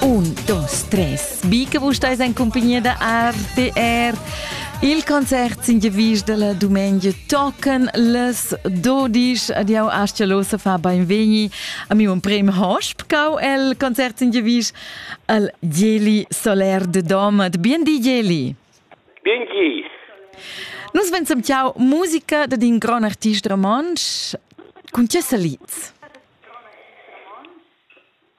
Un, dos, tres. Bica vus stais en compagnia da RTR. Il concert sin gevis della domenica tocan les 12 ad jau ascialosa fa beinvegni a mi un prem hosp cau el concert sin gevis al Geli Soler de Domat. Bien di Geli. Bien di. Nus pensam ciao musica da din gran artist romansch. Con ce saliz?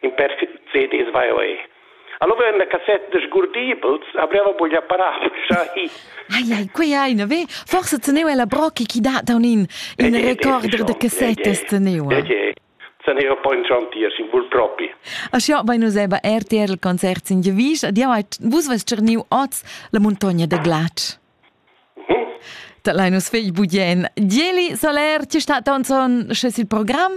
in perfect CDs vai oi. Allora vem la cassetta de sgurdibels, apriva buglia parava già hi. Ai ai, quei ai, na ve? Forse teneva la brocchi chi dat da un in recorder de cassettes teneva. Teneva poi in trantier, sin bul propi. A sio vai nos eba RTR il concert sin Gevisch, ad jau vus ves cerniu oz la montogna de Glac. Mhm. Da lai nos fegl budien. Dieli Soler, ti sta ton son, sches il program?